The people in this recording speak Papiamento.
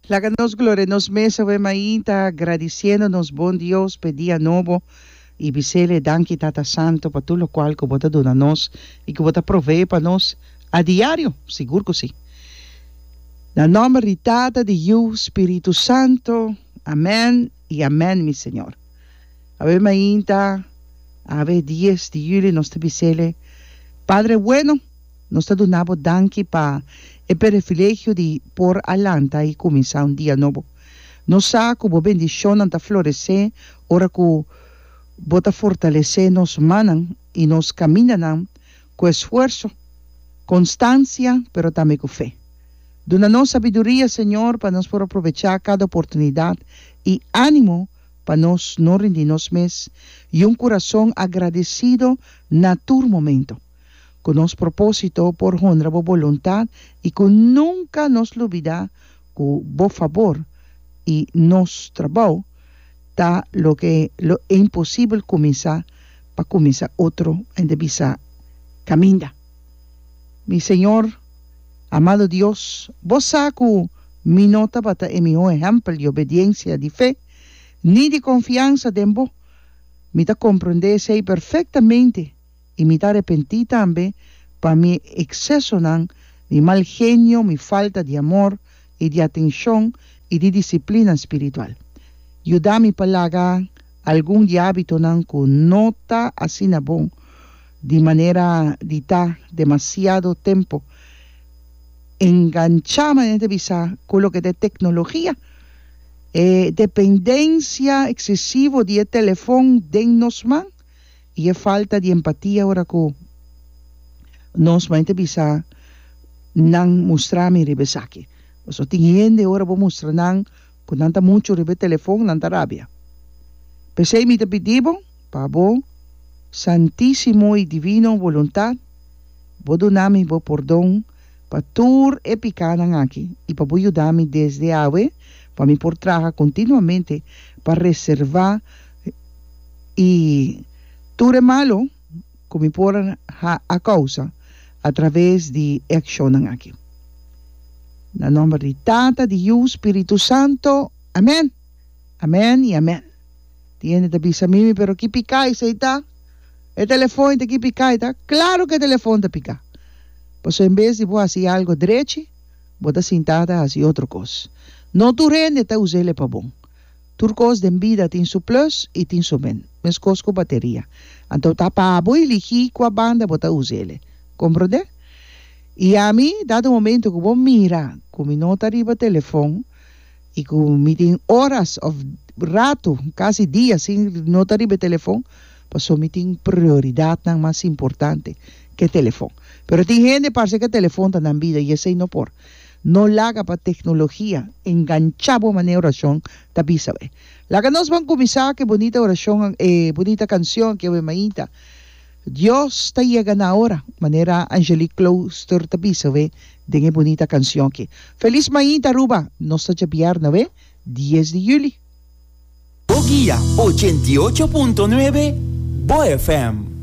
Laga nos gloria nos mes awe mainta agradiciendo nos bon Dios p'e dia nobo y bisele danki Tata Santo pa tur locual cu bo ta duna nos y cu bo ta provee pa nos adiario, sigur cu si. Na nomber di Tata, di Yu, Spiritu Santo, amen y amen mi Señor. Awe mainta awe dies di juli nos ta bisele Padre bueno. Nos ta duna bo danki pa e perefilegio di por a lanta i kuminsá un dia nobo. Nos sa ku bo bendishonnan ta floresé ora ku bo ta fortalesé nos mannan i nos kamindanan ku esfuerso, konstansia, pero tambe ku fe. Duna nos sabiduria, Señor, pa nos por aprovechá kada oportunidat i ánimo pa nos no rindi nos mes, i un kurason agradesido na tur momento. Ku nos propósito por honra bo boluntat i ku nunka nos lubidá ku bo fabor i nos trabou ta loke lo imposibel kuminsá pa kuminsá otro hende bisa kaminda mi Señor amado Dios bo sa ku mi no tabata e mihó ehèmpel di obediensia di fe ni di konfiansa den bo mi ta komprondé esei perfektamente. i mi ta repentí tambe pa mi eksesonan, mi mal genio, mi falta di amor i di atenshon i di disiplina spiritual. Yuda mi pa laga algun di hábitonan ku no ta asina bon, di manera di ta demasiado tempu enganchá, manera ta bisa, ku loke ta e teknologia. E dependensia eksesivo di e telefòn den nos man. I e falta di empatia ora ku nos mei ta bisa nan mustra mi riba esaki. Pasobra tin hende ora bo mustra nan ku nan ta muchu riba e telefon nan ta rabia. P'esei mi ta pidi bo pa bo santisimo i divino boluntat bo duna mi bo pordon pa tur e pikanan aki i pa bo yuda mi desde awe pa mi por traha kontinuamente pa reservá i tur e malu ku mi por ha a kousa atraves di e akshonnan aki. Na nòmber di Tata, di Yu, Spiritu Santu. Amèn! Amèn i amèn! Tin hende ta bisa mi, Mi, pero ki piká esei ta? Pero e telefon ei ta ki piká ei ta? Klaru ku e telefon ta piká! Pasobra en bes di bo hasi algu drechi, bo ta sintá ta hasi otro kos. No tur hende ta us'el ei pa bon. Tur kos den bida tin su plus i tin su min, meskos ku bateria. Anto ta pa bo i ligi kua banda bo ta usa el. Komprondé? I ami, dado momento ku bo mira ku mi no ta riba telefon i ku mi tin oras òf ratu, kasi dia sin no ta riba e telefon, pasó mi tin prioridatnan mas importante ke telefon. Pero tin hende parse ku e telefon ta nan bida i esei no por. No laga pa teknologia engancha bo manera orashon ta bisa awé. Laga nos ban kuminsá ku e bonita orashon, e bonita kanshon aki awé mainta, Dios ta yega na ora, manera Angelique Klooster ta bisa awé den e bonita kanshon aki. Felis mainta Aruba! Nos ta djabiar na awé dies di juli. Bo guia ochenta i ocho punto nuebe, bo FM.